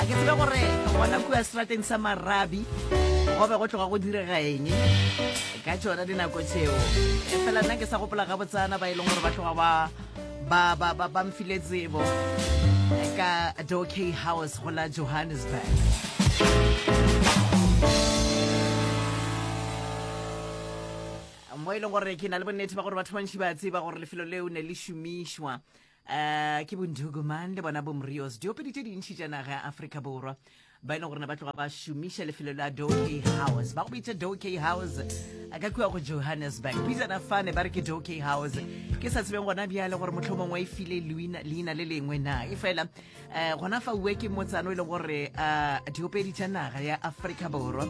a ke tsebe gore gona kua serateng sa marabi go be go tloga go direga eng ka tsona dinako tseo e fela nna ke sa gopola ga botsana ba e leng gore ba tloga ba ba ba ba ba mfile tsebo ka doke house go la johannesburg mo e leng gore ke na le bonnete ba gore batho bantši ba tseba gore lefelo leo ne le šomišwa Uh, ke bonduku mang le bona bomrios diopedi tše dintšhi tša naga ya afrika borwa ba e leng gore ne ba tloga ba šomiša lefelo la doke house ba go bitša doke house a ka kua go johannesburg pitsana fane ba re ke doke house ke sa tsebeng gona bjale gore motlho mongwe e file leina le lengwe na e fela um gona fa uwe ke motsano e leng gore um diopedi tša naga ya afrika borwa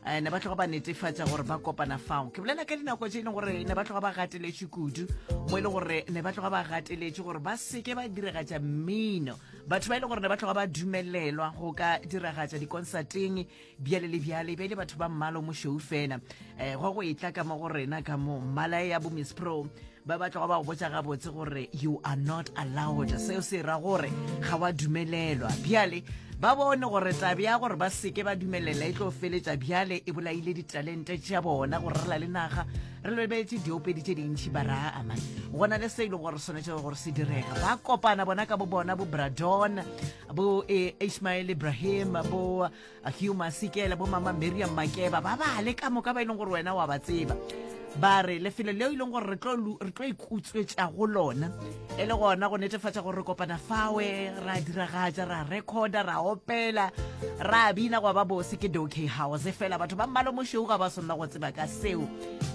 um ne ba tloga ba netefatša gore ba kopana fao ke bolela ka dinako tse e leng gore ne ba tloga ba gateletše kudu mo e leng gore ne ba tloga ba gateletše gore ba seke ba diragatša mmino batho ba e leng gore ne ba tloga ba dumelelwa go ka diragatša dikonsateng bjale le bjale e be e le batho ba mmalo mošou fela um go go e tla ka mo go rena ka mo mmala ya bo miss pro ba ba tloga ba go botsa gabotse gore you are not allowed seo se ra gore ga wa dumelelwa bjale ba bone gore tabe ya gore ba seke ba dumelela e tlo feletša bjale e bolaile ditalente tša bona gore re la le naga re lebeletse diopedi tše dintšhi ba raa amane go na le se e le gore swanetse gore se direga ba kopana bona ka bo bona bo bradon bo eh, ismael ibrahim bo Hugh Masike le bomama Miriam Makeba ba bale ka moka ba e leng gore wena wa ba tseba ba re lefelo leo e leng gore re tlo ikutswetša go lona e le gona go netefatša gore re kopana fawe ra diragatša ra recorda ra opela ra bina gwa ba bose ke dok house fela batho ba mmalo mošweu ga ba swanela go tseba ka seo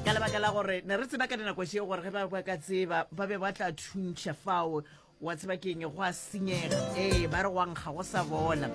ka lebaka la gore ne re tseba ka dinako šeo gore ge ba ba ka tseba ba be ba tla thuntšha fao wa tseba ke eng go a senyega ee ba re wankga go sa bona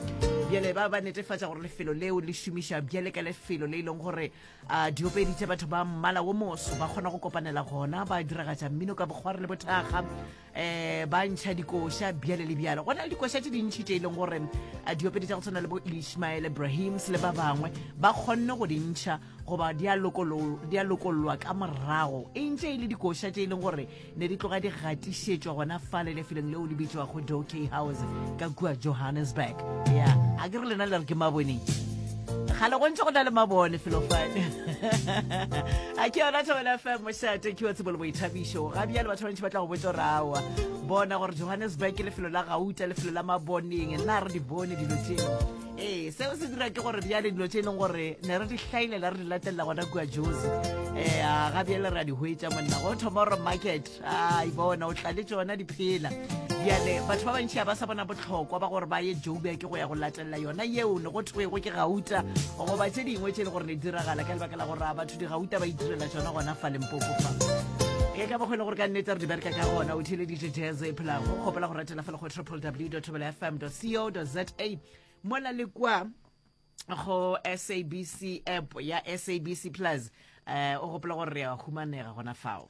bjale ba ba netefatša gore lefelo leo le šomiša bjale ka lefelo le e leng gore a diopedi tša batho ba mmala wo moso ba kgona go kopanela gona ba diragatša mmino ka bokgware le bothaga um ba ntšha dikoša bjale le bjalo go na le dikoša tše dintšhi tše e leng gore a diopedi tša go tshwana le bo ishmael ibrahims le ba bangwe ba kgonne go di ntšha goba di a lokollwa ka morago e ntse e le dikoša tše e leng gore ne di tloga di gatišetšwa gona fa le lefelong leo le bitšwago doke house ka kua johannesburg ya a ke re lena le re ke maboneng gale go ntse go na le mabone felofane a ke yona thobela fm mošate ke wa tsebo le boithabišo ga bjale batho bantši ba tla go botsa gore awa bona gore johannesburg ke lefelo la gauta lefelo la maboneng na re di bone dilo tseo ee seo se dira ke gore bjale dilo tse e leng gore ne re di hlailela re di latelela gona kua jose um eh, a ga bjale re a di hwetša monna go thoma gore market a ibona o tlale tsona di phela bjale batho ba bantšhi a ba sa bona botlhokwa ba gore ba ye jobia ke go ya go latelela yona yeo ne go thwego ke gauta goba tse dingwe tse e le gore ne diragala ka lebaka la gore a batho digauta ba itirela tsona gona fa lempopo fa e ka bogwele gore ka nnete re di bereka ka gona o theleditše jazz e phelago kgopela go ratela fela go www.thobelafm.co.za mola le kwa go sabc app ya sabc plus um o gopola gore re a humanega gona fao